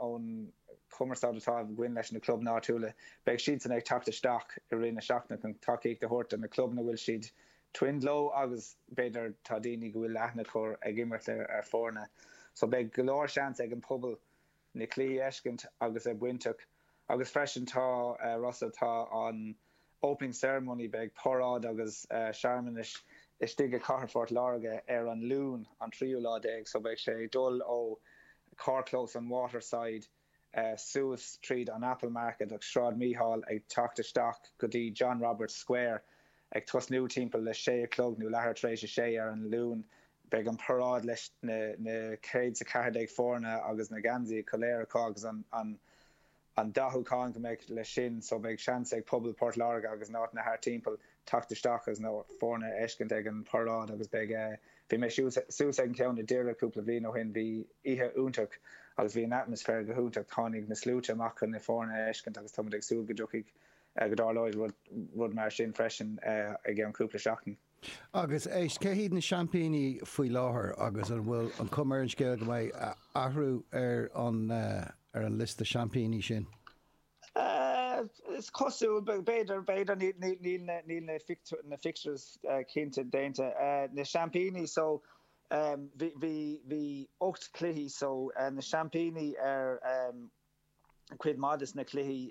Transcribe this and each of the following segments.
ón chumarsáid atá againn leis na club áitiúla, beidh siadsan ag teacht isteach i rith na seachtaine chun tacaíocht a thabhairt do na club ina bhfuil siad twinned leo agus b'fhéidir tá daoine go bhfuil leathan a chur ag imirt ar fhoirne. So beidh go leor seans ag an pobal na cluichí a fheiscint agus a bhainteach agus freisin tá Rossa atá ann Opening Ceremony Beidh paráid agus searmanais istigh i Cathair Phort Láirge ar an Luan an tríú lá déag so beidh sé ag dul ó carrchlós an Waterside suas tríd an Apple Market agus Sráid Mhichíl ag teacht isteach go dtí John Roberts Square ag tosnú timpeall a sé a chlog nó leathuair tar éis a sé ar an Luan. Beidh an paráid leis na céad 's a ceathair déag foirne agus na geansaí, go léir acu agus an. an dathúchán go mbeidh leis sin so beidh seans ag pobal Port Láirge agus na háiteanna thart timpeall teacht isteach agus na foirne a fheiscint ag an paráid agus beidh bhí mé thuas ag an ceann i Doire cúpla bliain ó shin bhí oíche iontach agus bhí an atmaisféar go hiontach tháinig na sluaite amach chun na foirne a fheiscint agus tá muid ag súil go dtiocfaidh go dtarlóidh rud rud mar sin freisin i gceann cúpla seachtain. Agus éist, cé hiad na seaimpíní faoi láthair agus an bhfuil an chuma ar an scéal go mbeidh athrú ar an liosta seaimpíní sin? Is cosúil, b'fhéidir, b'fhéidir, níl na fixtures cinnte déanta. Na seaimpíní so, bhí ocht cluichí so, na seaimpíní ar cuid maith de na cluichí.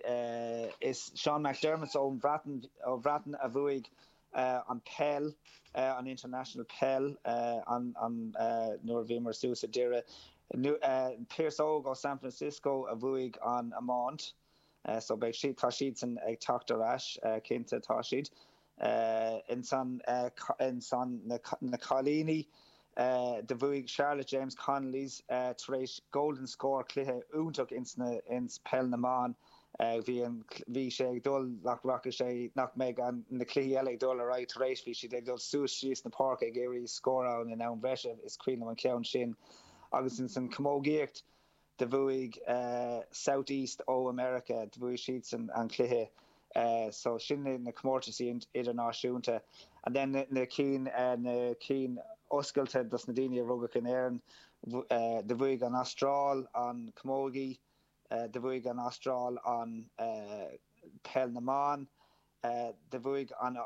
Is Sean McDermott ón Bhreatain a bhuaigh an peil, an International Peil, nuair a bhíomar suas i Doire. Pearse Óg ó San Francisco a bhuaigh an iomáint. So beidh siad, tá siadsan ag teacht ar ais, cinnte, tá siad. Ins an na cailíní do bhuaidh Charlotte James Connolly's tar éis Golden Score cluiche iontach ins na ins peil na mban bhí an bhí sé ag dul nach rachaidh sé nach mbeidh an na cluichí eile ag dul ar aghaidh tar éis bhí siad ag dul suas síos na páirce ag iarraidh scóráil in am bhreise is cuimhin liom an ceann sin agus ins an chamógaíocht Do bhuaigh South East ó America, do bhuaigh siadsan an cluiche. So sin na comórtaisí idirnáisiúnta. And then na cinn, na cinn oscailte dos na daoine a rugadh in Éirinn, do bhuaigh an Astráil an Camogie, do bhuaigh an Astráil an Peil na mBan, do bhuaigh an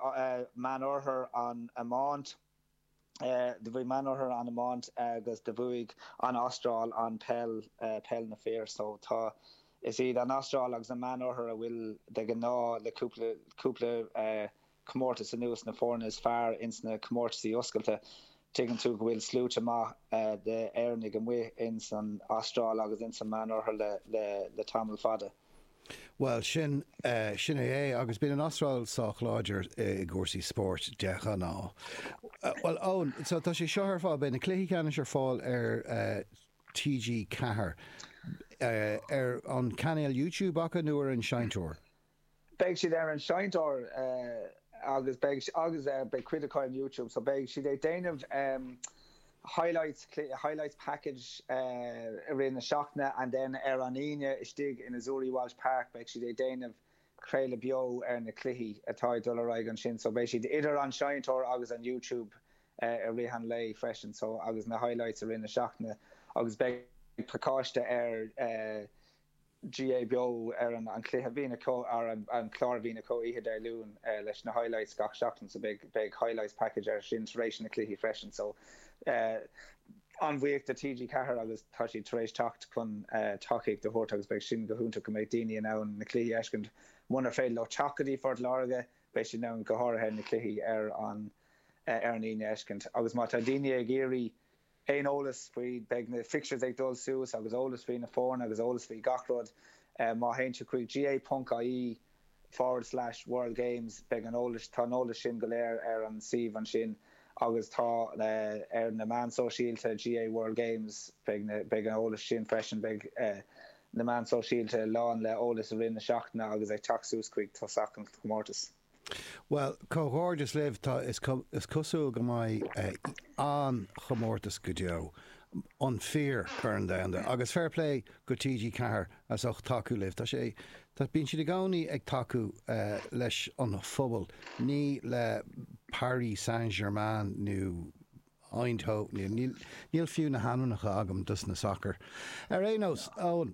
Meánoirthear an Iomáint. do bhuaigh Meánoirthear an iomáint agus do bhuaigh an Astráil an peil, peil na fir. So tá, is iad an Astráil agus an Meánoirthear a bhfuil de ghnáth le cúpla, cúpla comórtas anuas na foirne is fearr ins na comórtaisí oscailte. Tuigeann tú go bhfuil sluaite maith de Éireannaigh amuigh ins an Astráil agus ins an Meánoirthear le, le, le tamall fada. Bhuel, sin, sin é é. Agus bíonn an Astráil sách láidir i gcúrsaí spóirt de ghnáth. Bhuel, Eoin, so tá sé seo ar fáil, beidh na cluichí ceannais ar fáil ar TG4, ar an chainéal YouTube acu nó ar an seinnteoir? Beidh siad ar an seinnteoir agus beidh, agus beidh cuid acu ar YouTube, so beidh siad ag déanamh, highlights, click, highlights package, i rith na seachtaine and then ar an Aoine istigh in Azzurri Walsh Park beidh siad ag déanamh craoladh beo ar na cluichí atá ag dul ar aghaidh ansin so beidh siad idir an seinnteoir agus an YouTube i rith an lae freisin so agus na highlights i rith na seachtaine agus beidh pacáiste ar GAA Beo ar an an cluiche a bhíonn acu ar an clár a bhíonn acu oíche Dé Luain leis na highlights gach seachtain so beidh beidh highlights package ar sin tar éis na cluichí freisin so an-bhuíoch de TG4 agus tá siad tar éis teacht chun tacaíocht a thabhairt agus beidh sin go hiontach go mbeidh daoine in ann na cluichí a fheiscint munar féidir leo teacht go dtí Phort Láirge beidh siad in ann go háirithe na cluichí ar an ar an Aoine a fheiscint agus má tá daoine ag iarraidh aon eolas faoi, beidh na fixtures ag dul suas agus eolas faoi na foirne agus eolas faoi gach rud má théann tú chuig gaa.ie forward slash world games beidh an eolas, tá an eolas sin go léir ar an suíomh ansin agus tá ar na meáin sóisialta GAA World Games beidh na, beidh an eolas sin freisin, beidh na meáin sóisialta lán le eolas i rith na seachtaine agus ag teacht suas chuig tosach an chomórtais. Bhuel, comhghairdeas libh, tá, is cosúil go mbeidh an-chomórtas go deo, an fíor Chorn Domhanda, agus fair play go TG Ceathair as ucht tacú libh, tá sé, bíonn siad i gcónaí ag tacú leis an phobal, ní le Paris Saint Germain nó Eindhoven, níl fiú na hainmneacha agam dos na sacair, ar aon nós, Eoin.